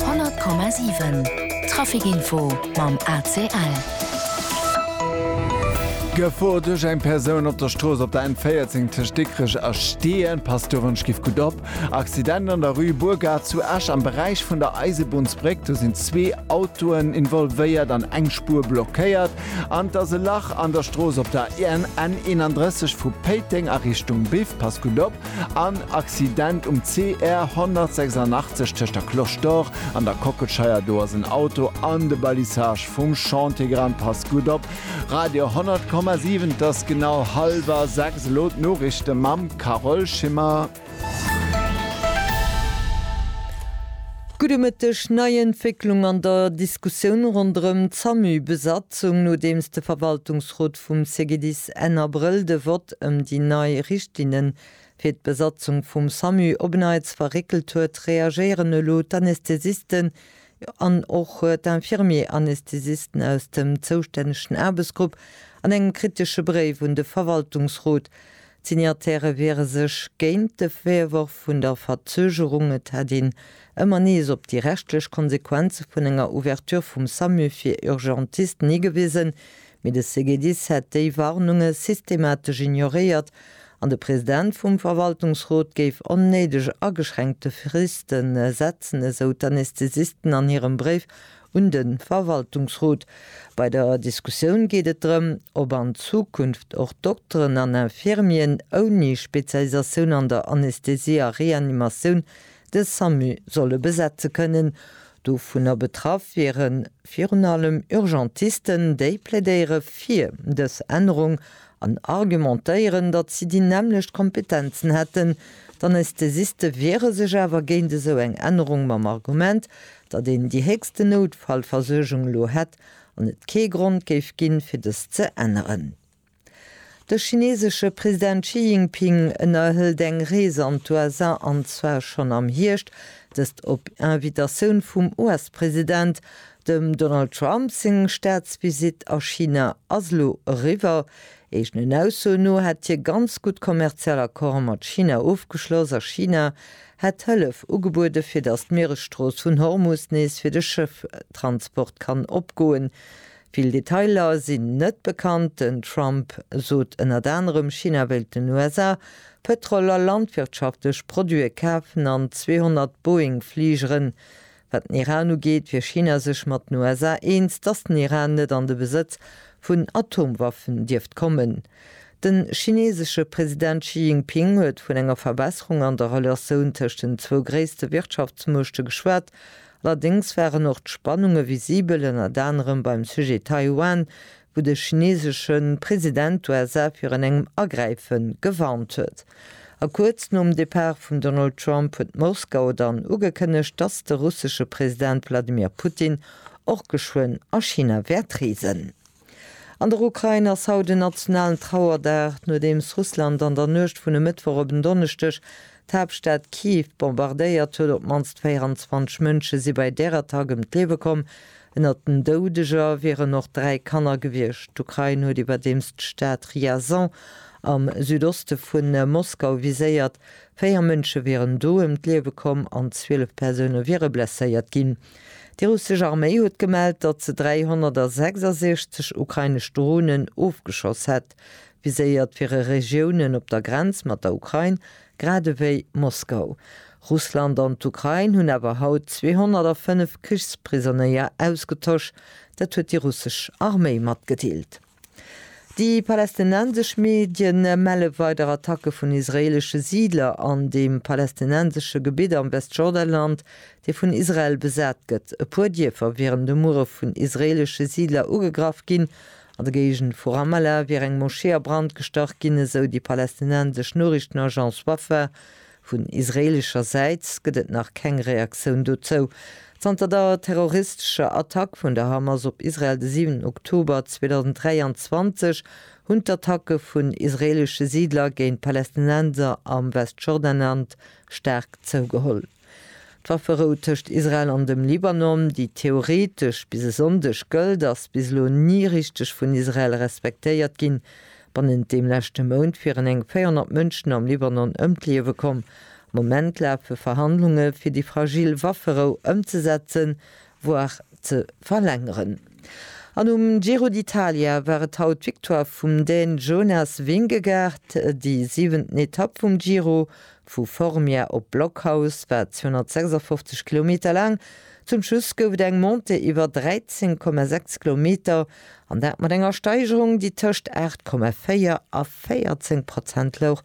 100,7 Trafic Info mam ACL. Gefor duerch eng Persoun op der Strooss op der N14 tëscht Dikrech a Steeën, passt do wënschgift gutt op. Accident an der Rue Burgard zu Esch am Beräich vun der Eisebunnsbréck, do sinn zwee Autoen involvéiert an eng Spuer blockéiert. An et ass e Lach an der Strooss op der N31 vu Péiteng a Richtung Biff, passt gutt op. En Accident um CR 186 tëscht der Cloche d'Or an der Kockelscheier, do ass en Auto an de Balisage vum Chantier geran. Passt gutt op! Radio 100,7 't ass genau halwer 6, elo d'Noriichte mam Carole Schimmer. Gudde Mëtteg, Nei Entwécklung an der Diskussioun ronderëm d'Samü-Besatzung, nodeems de Verwaltungsrot vum CGDIS, gëtt Enn Abrëll de Vott ëm déi nei Richtlinne fir d'Besatzung vum Samu op en Neits verréckelt huet, reagéieren elo d'Anästhesisten an och d'Infirmier-Anästhesisten aus dem zoustännegen Aarbechtsgrupp an engem kritesche Bréif un de Verwaltungsrot. D'Signatairë wiere sech géint de Virworf vun der Verzögerung, et hätt een ëmmer nees op déi rechtlech Konsequenze vun enger Ouverture vum Samu fir Urgentisten higewisen, Mee de CGDIS hätt déi Warnunge systematesch ignoréiert an de President vum Verwaltungsrot géif onnéideg ageschränkte Friste setzen, esou d'Anästhesisten an hirem Bréif un de Verwaltungsrot. Bei der Diskussioun geet et drëm, ob an Zukunft och Dokteren an Infirmieren ouni Spezialisatioun an der Anästhesie a Reanimatioun de Samu solle besetze kënnen. Dovunner betraff wiere virun allem Urgentisten, déi plädéiere fir dës Ännerung an argumentéieren, datt si déi nämmlecht Kompetenzen hätten. D'Anästhesiste wiere sech awer géint esou eng Ännerung mam Argument, datt een déi héchsten Noutfallversuergung elo hätt an et kee Grond géif ginn, fir dës ze änneren. De chineesesche President Xi Jinping ënnerhëlt eng Rees an d'USA, an zwar schonn am Hierscht, dëst op Invitatioun vum US-President. Dem Donald Trump seng Staatsvisitt a China ass elo eriwwer. Eegenen Aussoen no hätt hie ganz gutt kommerziell Accorde mat China ofgeschloss a China hätt Hëllef ugebuede fir datt d'Mieresstrooss vun Hormus nees fir de Schëfftransport kann opgoen. Vill Detailer sinn net bekannt. Den Trump sot ënnert anerem, China wéilt den USA Pëtrol a landwirtschaftlech Produite kafen an 200 Boeing-Fligeren. Wat den Iran ugeet, wier China sech mat den USA eens, datt den Iran net an de Besëtz vun Atomwaffen dierft kommen. Den chinesesche President Xi Jinping huet vun enger Verbesserung an der Relatioun tëscht den zwou gréisste Wirtschaftsmuechte geschwat Allerdéngs waren och d'Spannunge visibel, ënnert anerem beim Sujet Taiwan, wou de chinesesche President d'USA virun engem Agräife gewarnt huet. A kuerz nom Depart vum Donald Trump huet Moskau dann ugekënnegt, dass de russesche President Wladimir Putin och geschwënn a China wäert reesen. An der Ukrain ass haut en nationalen Trauerdag, nodeems Russland an der Nuecht vun e Mëttwoch op en Donneschdeg d'Haaptstad Kiew bombardéiert huet. Op d'mannst 24 Mënsche si bei där Attack ëm d'Liewe komm. Ënnert den Doudeger wieren och dräi Kanner gewiescht. D'Ukrain huet iwwerdeems d'Stad Ryazan am Südoste vu Moskau viséiert. Véier Mënsche wieren do ëm d'Liewe komm an 12 Persoune wiere blesséiert ginn. Déi russesch Arméi huet gemellt, datt se 366 ukrainesch Dronen ofgeschoss hätt, viséiert fir e Regiounen op der Grenz mat der Ukrain, grad ewéi Moskau. Russland an d'Ukrain hunn awer haut 205 Krichsprisonéier ausgetosch, dat huet déi russesch Arméi matgedeelt. Déi palästinensesch Medie melle weider Attacke vun israeelesche Siidler an deem palästinensesche Gebitt am Westjordanland, dee vun Israel besat gëtt. E puer Dierfer wieren de Muere vun israeelesche Siidler ugegraff ginn. An der Géigend vu Ramallah wier eng Moschee a Brand gestach ginn, esou déi palästinensesch Noriichtenagence Wafa, Vun israeelescher Säit gëtt et nach keng Reaktioun dozou. Zanter der terroristescher Attack vun der Hamas op Israel de 7 Oktober 2023 hunn d'Attacke vun israeelesche Siidler géint Palästinenser am Westjordanland staark zougeholl. D'Wafferou tëscht Israel an dem Libanon, déi theoretesch bis e Sonndeg gëllt, ass bis elo ni richteg vun Israel respektéiert ginn, Bannent deem leschte Mount wieren eng 400 Mënschen am Libanon ëm d'Liewe komm. Am Moment lafe Verhandlunge fir déi fragil Wafferou ëmzesetzen, voire ze verlängeren. An um Giro d'Italia war et haut d'Victoire vum Dän Jonas Vingegaard. Déi siwenten Etapp vum Giro, vu Formia op Blockhaus, war 256 Kilometer laang. Zum Schluss gouf et eng Montée iwwer 13,6 Kilometer, An dat mat enger Steigerung, déi tëscht 8,4 a 14 Prozent louch.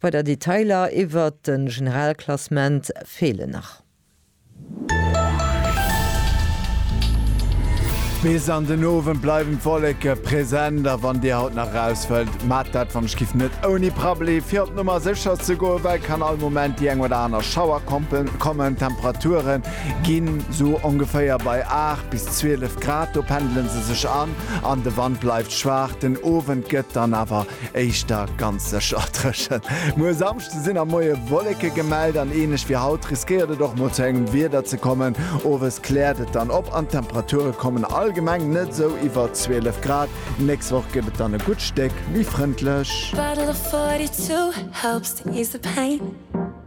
Weider Detailer iwwert de Generalklassement feelen nach. Bis an den Owend bleiwen d'Wolleke present a wann Dir haut nach eraus wëllt, maacht dat wannech giff net ouni Prabbeli. Fir op d'Nummer sécher ze goen, well kann all Moment déi eng oder aner Schauer kommen. D'Temperaturen ginn esou ongeféier bei 8 bis 12 Grad, do pendele se sech an, an de Wand bleift schwaach. Den Owend gëtt dann awer éischter ganz sécher dréchen. Muer e Samschde sinn am Moie Wolleke gemellt an ähnlech wéi haut riskéiert et och mol zu engem Wieder ze kommen. Owes kläert et dann op an d'Temperature kommen allgemeng net esou iwwer 12 Grad. Nächst Woch gëtt et dann e gutt Stéck méi frëndlech.